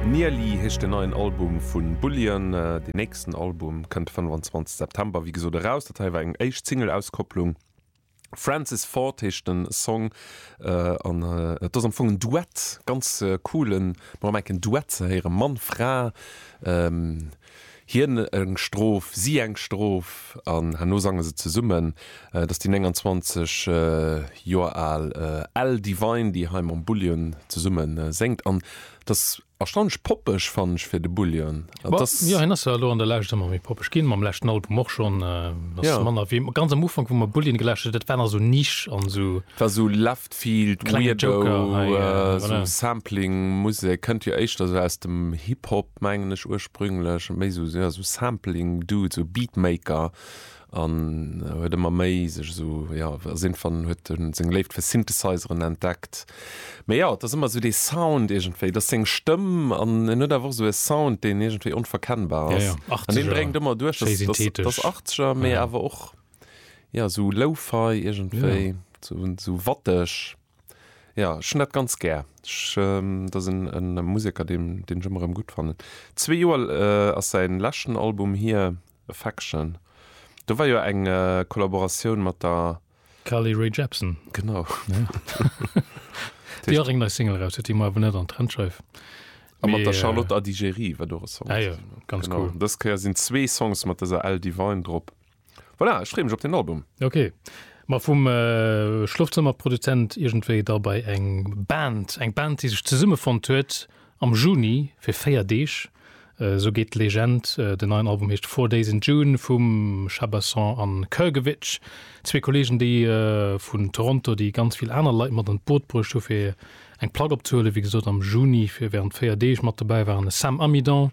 Nearly heescht den neien Album vu Bullion. Deen nächsten Album kënnt de 25 September, wéi gesot, eraus. Dat hei war eng éischt Single-Auskopplung. Francis Ford heescht de Song an et ass am Fong en Duett, ganz coolen, mol enk en Duett ze héieren, Mann, Fra. Hien eng Strof, si eng Strof an herno sange se zesummen. Dat ass déi 29 Joer al Elle Devine, déi hei mam Bullion zesumme séngt. An et ass erstaunlech poppeg, fannen ech, fir de Bullion. An et ass. Jo, hien ass jo elo an der Lescht ëmmer méi poppeg ginn, mam leschten Album och schonn. Et ass manner wéi ganz am Ufank, wou mer Bullion gelauschtert hunn. Dat war nach esou Niche an esou. Dat war esou La. Vill Weirdo, esou Sampling-Musek kënnt jo éischter esou aus dem Hip-Hop, mengen ech, ursprünglech. Méi esou, jo, esou Sampling-Dude, esou Beatmaker an huet ëmmer méi sech esou, jo, ass iergendwann, huet e seng Léift fir Synthesizeren entdeckt. Mee jo, et ass ëmmer esou dee Sound iergendwéi, et ass seng Stëmm an en huet awer och esou e Sound, deen iergendwéi onverkennbar ass an dee bréngt ëmmer duerch, dass achtzeger, mee awer och. Ja esou Lo-Fi iergendwéi, esou watteg. Ja ech hunn dat ganz gär. Ech, dat ass e Museker deen ech ëmmer erëm gutt fannen. Zwee Joer ass säin leschten Album hier, Affection. Do war jo eng Kollaboratioun mat der. Carly Rae Jepsen. Genau. Déi och eng nei Single eraus huet, déi mer awer net an d'Trendscheif. A mat der Charlotte Adigéry war do e Song. Ah jo, ganz cool. Dës Kéier sinn zwee Songs mat dëser Elle Divine drop. Voilà, ech freeë mech op den Album. Ok, ma vum Schlofzëmmerproduzent iergendwéi da bei eng Band, eng Band, déi sech zesummefonnt huet am Juni fir 4 Deeg, esou geet d'Legend. Den neien Album heescht Four Days in June vum Shabasson an Krgovic, zwee Kolleegen, déi vun Toronto, déi ganz vill aner Leit mat an d'Boot bruecht hu fir eng Plack opzehuelen, wéi gesot am Juni fir wärend 4 Deeg. Mat dobäi waren de Sam Amidon,